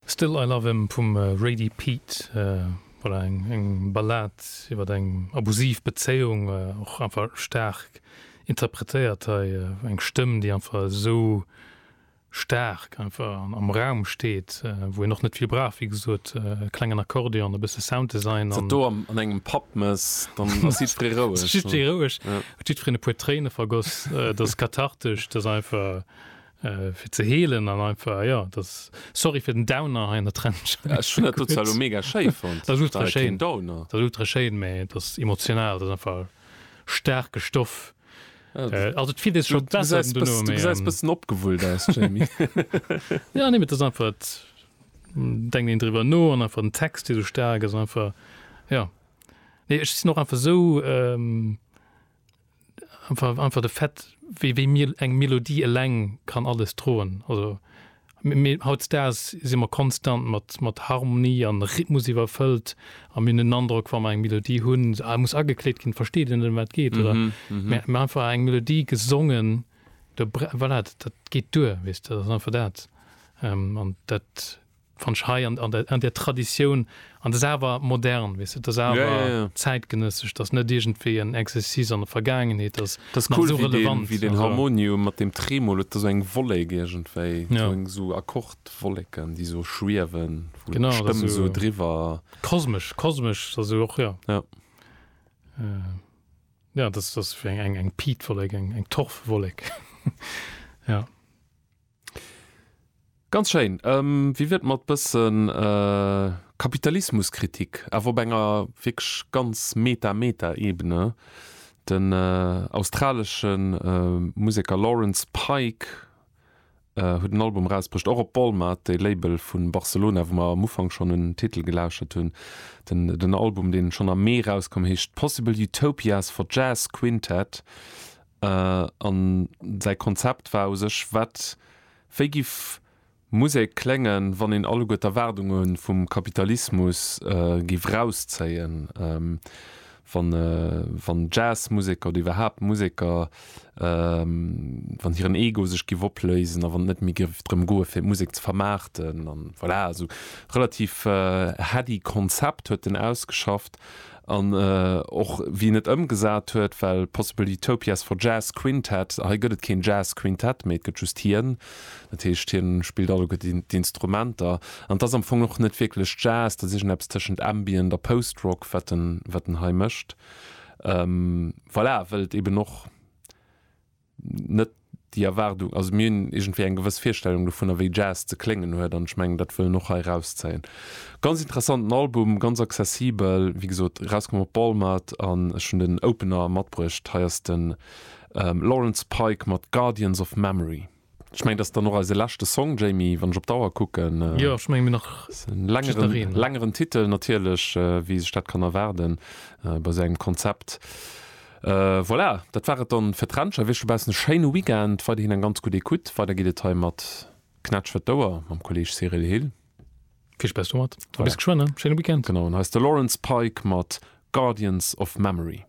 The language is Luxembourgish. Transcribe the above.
Still I Love Him vum Rady Pete, voilà, eng Ballad iwwer eng abusiv Bezéiung, och einfach staark interpretéiert hei, eng Stëmm déi einfach esou staark einfach am Raum steet, wou een och net vill brauch, wéi gesot e klengen Akkordeon, e bësse Sounddesign an. D'Satdo an engem Pub mes, dann ass jiddweree roueg. Ass jiddweree roueg, huet jiddwereen e puer Tréine vergoss, et ass kathartesch, et ass einfach Fir ze heelen an einfach jo dass sorry fir den Downer hei an der Trench. Ech hunn dat do zwar elo mega schéi fonnt. Dat ass ultra schéin, dat ass ultra schéin, mä et ass emotional, et ass einfach staarke Stoff. Also et fillt ee sech scho besser den dono, mä. Du gesäis bëssen opgewullt aus, Jamie. Jo, nee, mä et ass einfach, et denkt een driwwer no an einfach den Text dee sou staark ass an einfach, jo. Nee, ech sinn och einfach esou. einfach einfach de Fait wéi wéi mir eng Melodie eleng kann alles droen also mir hautstaas si mer konstant mat mat Harmonie an Rhythmus iwwerfëllt a mir hunn den Androck wa mer eng Melodie hunn se muss agekleet ginn versteet dir net ëm wat et geet oder mä mä einfach eng Melodie gesongen do voilà dat dat geet duer weess de dat ass einfach dat an dat Wann ech hei an der, an där Traditioun, an dat ass awer modern, weess de, dat ass awer zäitgenëssesch, dat ass net iergendwéi en Exercice an der Vergaangenheet, dat ass nach esou relevant. Dat ass cool, wéi deen Harmonium mat deem Tremolo, et ass esou eng Wollek iergendwéi, esou Akkordwolleken, déi esou schwiewen, wou d'Stëmm esou driwwer. Genau, kosmesch, kosmesch, dat ass jo och, jo. Jo. Jo, dat ass eng Piitwollek, eng Torfwollek, jo. Ganz schéin. Wéi wier et mat bëssen Kapitalismuskritik, awer op enger wierklech ganz Meta-Meta-Ebene? Den australesche Museker Lawrence Pike huet en Album erausbruecht, och op Walmart, dee Label vu Barcelona, wou mer am Ufank schonn un den Titel gelauschert hunn. Den Album, dee schonn am Mee erauskoum, heescht Possible Utopias for Jazz Quintet. An säi Konzept war u sech wat? Wéi giff Musek kléngen, wann een alleguer d'Erwaardunge vum Kapitalismus giff rauszéien, wann Jazzmuseker oder iwwerhaapt Museker, wann hiren Ego sech giff opléisen a wann et net méi giff drëm goen, fir d'Musek ze vermaarten? An voilà, esou relativ heady Konzept huet en ausgeschafft. An och wien et ëmgesat huet, well Possible Utopias for Jazz Quintet, hei gëtt et keen Jazz Quintett, mee et gëtt just hien. Dat heescht, hien spillt alleguer d'Instrumenter. An et ass am Fong och net wierklech Jazz, dat ass iergendeppes tëschent Ambient a Post-Rock, wat en hei mécht. Voilà, well et eeben och net déi Erwaardung, also mir hunn iergendwéi eng gewëss Virstellung dovunner, wéi Jazz ze kléngen huet an ech mengen, dat wëll en och hei erauszéien. Ganz interessanten Album, ganz accessibel, wéi gesot erauskomm op Walmart an ech hunn den Opener matbruecht, hei ass de Lawrence Pike mat Guardians of Memory. Ech mengen, dat ass dann och eise leschte Song, Jamie, wann ech op d'Auer kucken. Jo, ech mengen, mir nach just en. Ass en längeren, längeren Titel natierlech, wéi ee sech dat kann erwaarden bei esou engem Konzept. Voilà, dat war et dann fir d'Rencher. Wénsche baussen e schéine Weekend, weiderhin eng ganz gutt Ecoute. Weider geet et hei mat Knätsch fir d'Ouer mam Kolleeg Cyril Hill. Vill Spaass domat a bis geschwënn. Schéine Weekend. Genau, an hei ass de Laurence Pike mat Guardians of Memory.